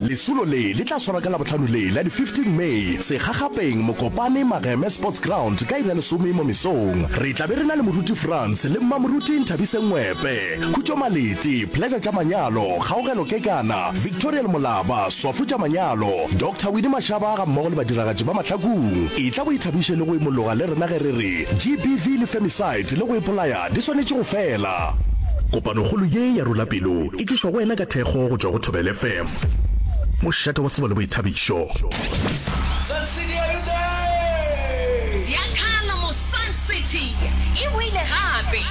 Lesolo le le tla swarwa ka Labohlano le la di 15 May segagapeng Mokopane Mageme Sports Ground ka iri ya lesome mo mesong. Re tla be re na le moruti Frans le mmamoruti Nthabise Ngwepe, Khutšo Maleti, Pleasure tša manyalo, Kgaogelo Kekana, Victorial Molaba, Swafo tša manyalo, Doctor Winnie Mashaba ga mmogo le badiragatši ba Mahlakung. Etla o ithabiše le go imologa le rena ge re re GBV le Femicide le go ipolaya di swanetše go fela. Kopanokgolo ye ya Rula Pelo E tlišwa go wena ka thekgo go tšwa go Thobela FM. Mošate wa tsebo le boithabišo. Sun City are you there? Ziakhala mo Sun City e boile gape.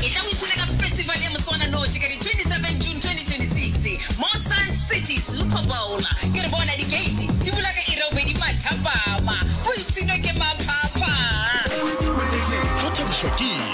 E tla o ipshina ka festival ya moswananoši ka di 27 June 2026 mo Sun City Super Bowl. Ke re bona di gate di bula ka iri ya bobedi mathapama. Go ipshinwe ke maphapha. Go thabišwa ke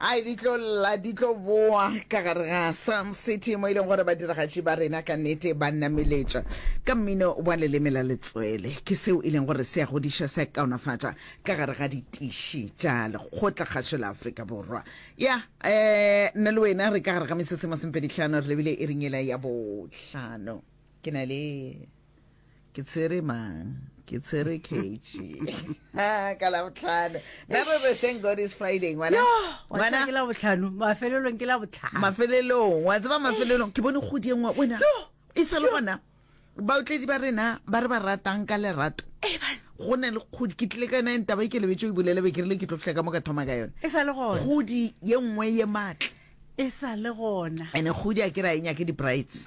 Ai, di tlo lla, di tlo boa ka gare ga Psalm City, mo e leng gore badiragatši ba rena ka nnete ba nameletša ka mmino wa leleme la letswele. Ke seo e leng gore se a godiša, se a kaonafatša ka gare ga ditiši tša lekgotlakgašo la Afrika Borwa. Ya, um nna le wena re ka gare ga mesese masomepedihlano, re lebile iring yela ya bohlano. Ke na le. ke tshwere mang ke tshwere kechi ka labotlhano nabobe thank god is friday ngwana ke labotlhano mafelelong ke labotlhano mafelelong wa tseba mafelelong ke bone kgodi e nngwe wena e sa le gona baotledi ba rena ba re ba ratang ka lerato eh, go ne le kgodi ke tlile ka nang taba e ke lebetse o bolele be ke rile ke tlo fitlha ka mo ka thoma ka yone e sa le gona kgodi ye nngwe ye matle e sa le gona ene kgodi a ke ra e nyake di-brights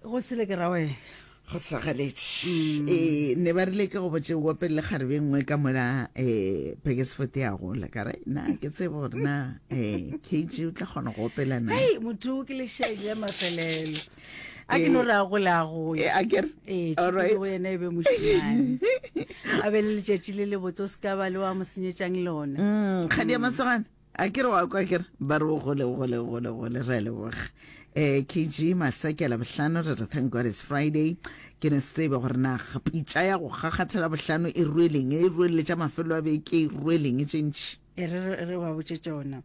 go sele ke rawe go sagaletše um mm. ne ba rile ke go botse wa pele le kgarebe nngwe ka mola um eh, pakesfort ya gola ka re na ke tsebo gore na um eh, kg o tla kgona go opela na motho ke lešedi ya mafelelo a ke no re a gole a goyaeena e be mošimane a be le letšatši le lebotse o se ka ba le wa mo senyetsang lona mm, kgadi ya masegana a ke re wa kwa ke re ba re o gole o gole o gole o gole re a leboga eh kg masakela bohlano re re thank god is friday ke ne se tsebe gore na ga- pitša ya go kgakgathela bohlano e rueleng e rueleletša mafelo a beke e rueleng e tšentši e re re- re ba botše tšona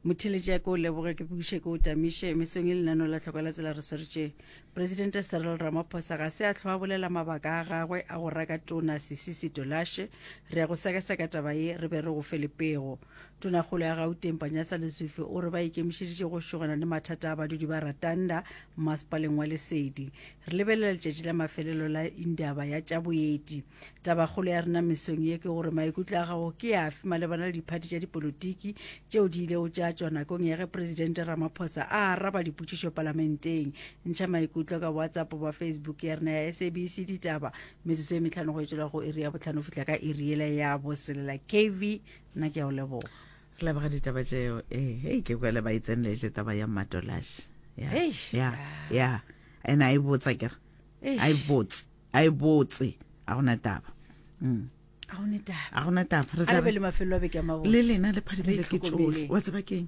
motheletše ya ke o leboge ke buše ke o tamiše mesong e lenano la tlhoko la tsela re swertše presidente serel ramaphosa ga se a tlho a bolela mabaka a gagwe a go raka tona sisisi tolashe re ya go sekaseka taba ye re be re go fe lepego Tonakgolo ya Gauteng Panjasa Lesufi o re ba ikemišeditše go šogana le mathata a badudi ba Ratanda mmasepaleng wa Lesedi. Re lebelela letšatši la mafelelo la indaba ya tša boeti. Tabakgolo ya rena mesong ye ke gore maikutlo a gago ke afe malebana le diphathi tša dipolotiki tšeo di ilego tša tšwa nakong ya ge Presidente Ramaphosa a araba dipotšišo palamenteng. Ntšha maikutlo ka WhatsApp goba Facebook ya rena ya SABC Ditaba metsotso e metlhano go etšwela go iri ya botlhano fihla ka iri yela ya boselela. KV nna ke ya o leboga re leboga ditaba tseo ee hei ke kwele ba itseneletse taba ya matolashi ya Hey. ya ya and a e botsa ke re Eish. a e botse a e botse a gona taba Mm. ga o ne taba a gona taba re a tla re be le mafelo a beke a mabotse le lena le phadimele Re ke tsohle itlhokomele. wa tseba keng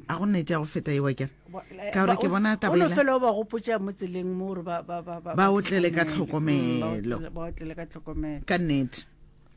a go nnete ya go feta ewa kere Ba- ka gore ke ba- bona o no tabela fela o ba gopotsa mo tseleng mo gore ba- ba- ba- ba- Ba otlele ka tlhokomele. Mm, ba otlele- ba otlele ka tlhokomelo ka nnete